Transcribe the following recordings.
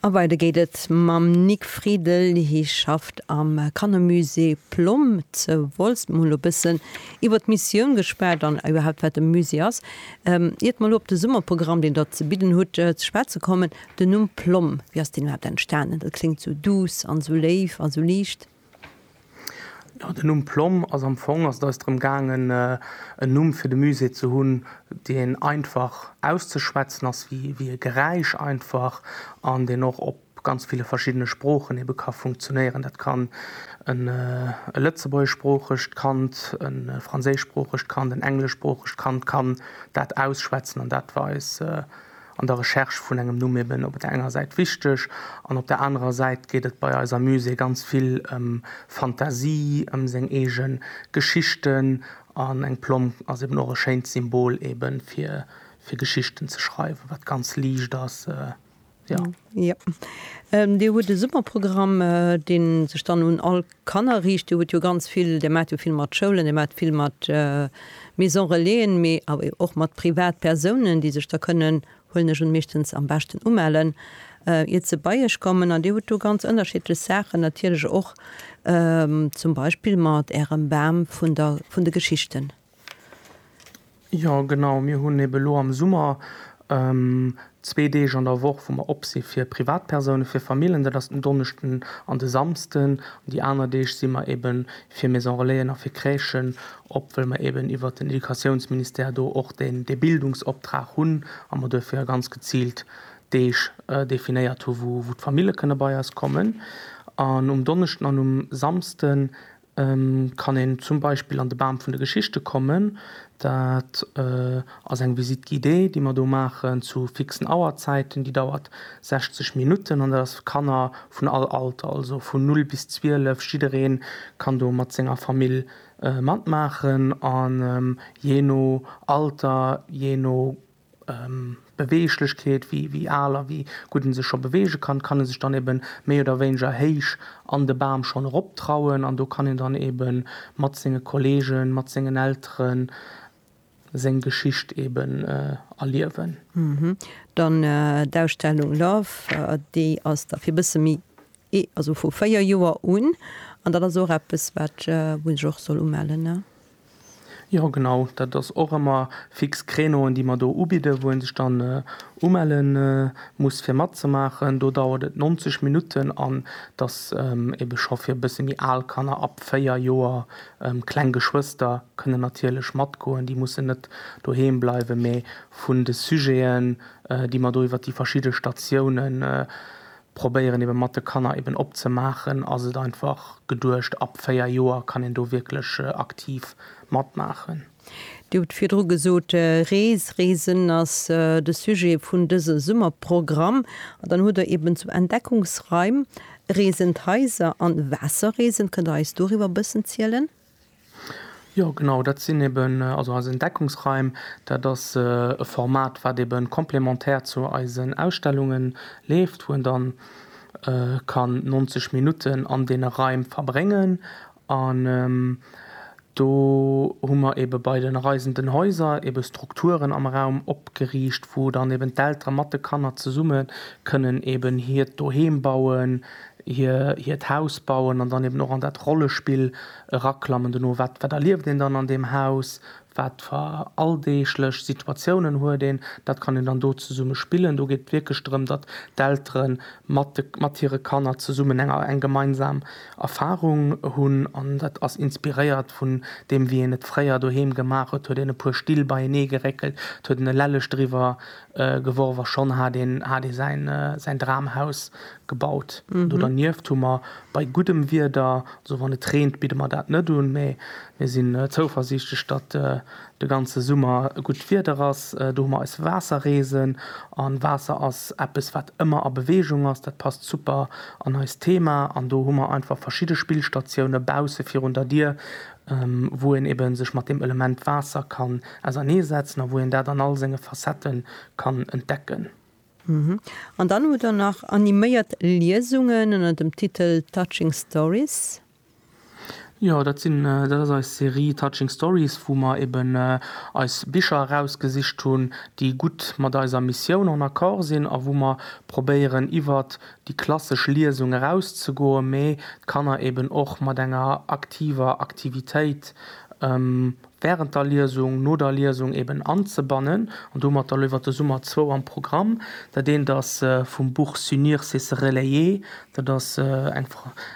A weider geet et mam Nic Friedel. Hie schafft am Kannermusée Plomm ze Wolz. Mol e bëssen iwwer d'Missioun geschwat an iwwerhaapt wat e Musée ass. Iert mer elo op de Summerprogramm, deen Der ze bidden hutt, ze schwätze kommen, den Numm Plomm, wéi ass deen iwwerhaapt entstanen? Dat kléngt sou duuss an sou léif a sou liicht. Jo den Numm Plomm ass am Fong ass et eis drëm gaangen en Numm fir de Musée ze hunn deen einfach auszeschwätzen ass, wéi e Geräisch einfach an deen och op ganz ville verschiddene Sproochen ebe ka funktionéieren. Dat kann e lëtzebuergeschsproochegt Kand, e franséischsproochegt Kand, en engleschsproochegt Kand kann dat ausschwätzen an dat war eis an der Recherche vun engem Numm eben op der enger Säit wichteg an op der anerer Säit geet et bei eiser Muse ganz vill ëm Fantasie, ëm seng eege Geschichten an eng Plomm ass eben och e schéint Symbol ebe fir fir Geschichten ze schreiwen, wat ganz liicht ass, jo. Jo. Dir hutt e super Programm, dee sech dann un all. Kanner riicht. Dir hutt jo ganz vill, Dir maacht jo vill mat Schoulen, Dir maacht vill mat Maison Relaisen, mee awer jo och mat Privatpersounen, déi sech da kënnen, huelen ech un, meeschtens am beschten umellen, iert se bei Iech kommen. An Dir hutt do ganz ënnerschiddlech Saachen natierlech och, zum Beispill mat Ärem Bam vun de Geschichten. Jo genau, mir hunn eben elo am Summer zwee Deeg an der Woch wou mer op si fir Privatpersounen, fir Famillen, dat ass den Donneschden an de Samsden. An déi aner Deeg si mer eben fir Maison Relaisen a fir Crèchen op, well mer eben iwwert den Educatiounsministère do och deen dee Bildungsoptrag hunn a mer duerfir ganz geziilt Deeg definéiert hu wou d'Famille kënne bei eis kommen. An um Donneschden an um Samsden kann een zum Beispill an de Bam vun de Geschichte kommen. Dat ass eng Visite guidée, déi mer do maachen zu fixen Auerzäiten. Déi dauert 60 Minutten an dat ass fir Kanner vun all Alter, also vun null bis zwielef. Jidderee kann do mat senger Famill matmaachen an jee no Alter, jee no Beweeglechkeet, wéi al a wéi gutt en sech scho beweege kann, kann e sech dann eben méi oder wéineger héich an de Bam schonn erop trauen an do kann een dann eben mat senge Kolleegen, mat sengen Elteren seng Geschicht eben erliewen. Dann d'Ausstellung Love, déi ass da fir e bësse méi Et ass vu véier Joer un, an dat ass och eppes, wat ech och soll umellen, ne? Jo, genau. Dat ass och ëmmer fix Créneauen, déi mer do ubidden, wou ee sech dann umelle muss, fir matzemaachen. Do dauert et 90 Minutten an et ass ebe scho fir e bësse méi al Kanner, ab véier Joer. Kleng Geschwëster kënnen natierlech matgoen, déi mussen net doheem bleiwen. Mee vun de Sujeten, déi mer do iwwer déi verschidde Statiounen probéieren eben mat de Kanner eben op ze maachen, ass et einfach geduecht ab 4 Joer kann een do wierklech aktiv mat maachen. Dir hutt virdru gesot, Rees, Reesen ass de Sujet vun dëse Summerprogramm. An dann hutt Der eben zu Entdeckungsraim, Reesen, d'Haiser an Waasserreesen. Kënnt Der eis doriwwer e bëssen zielen? Jo genau, dat sinn eben also eis Entdeckungsraim. Dat ass e Format, wat eben complémentaire zu eisen Ausstellunge leeft, wou een dann kann 90 Minutten an deene Raim verbréngen. An do hu mer eben bei den Reisenden Häuser eben Strukturen am Raum opgeriicht, wou dann eben d'Elteren mat de Kanner zesumme kënnen eben hiert Doheem bauen, hiert Haus bauen an dann eben och an dat Rollespill eraklammen, dono wat wat erlieft een dann an deem Haus, wat fer alldeeglech Situatiounen huet een, dat kann een dann do zesumme spillen. Do geet et wierklech drëm, datt d'Eltere mat de mat hire Kanner zesummen eng eng gemeinsam Erfarung hunn an dat ass inspiréiert vun deem wéi een et fréier doheem gemaach huet, huet een e puer Still beienee geréckelt, et huet en e Lellech driwwer geworf a schonn hat een hat ee säin säin Dramhaus Gebaut. Do dernieft hu mer bei guddem Wieder, also wann et reent, bidde mer dat net un, mä mir sinn zouversiichtlech, datt de ganze Summer gutt Wieder ass. Do hu mer eis Waasserreesen. A Waasser ass eppes, wat ëmmer a Beweegung ass. Dat passt super an eist Thema. An do hu mer einfach verschidde Spillstatioune bausse virun der Dier, wou een ebe sech mat deem Element Waasser kann ausernee setzen a wou een dat an all senge Facetten kann entdecken. An dann hutt der nach animéiert Liesungen ënner dem Titel Touching Stories. Jo, dat sinn, dat ass eis Serie Touching Stories, wou mer eben eis Bicher erausgesicht hunn, déi gutt mat eiser Missioun en Accord sinn a wou mer probéieren iwwert déi klassesch Liesung erauszegoen, mee d'Kanner eben och mat enger aktiver Aktivitéit während der Liesung, no der Liesung eben anzebannen an domat da lo iwwert de Summer zwou am Programm. Dat eent ass vum Buch S'unir c'est se relayer, dat ass eng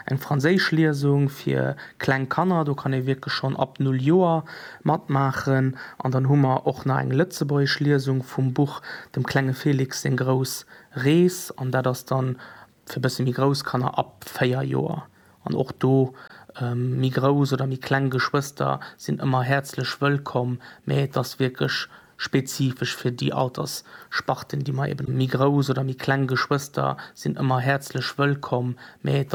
eng franséisch Liesung fir kleng Kanner, do kann ee wierklech schonn ab null Joer matmaachen an dann hu mer och nach eng lëtzebuergesch Liesung vum Buch Dem klenge Felix seng grouss Rees an dat ass dann fir bësse méi grouss Kanner ab 4 Joer an och do méi grouss oder méi kleng Geschwëster sinn ëmmer häerzlech wëllkomm, mä et ass wierklech spezifesch fir déi Alterssparten, déi mer eben. Méi grouss oder méi kleng Geschwëster sinn ëmmer häerzlech wëllkomm, mä et.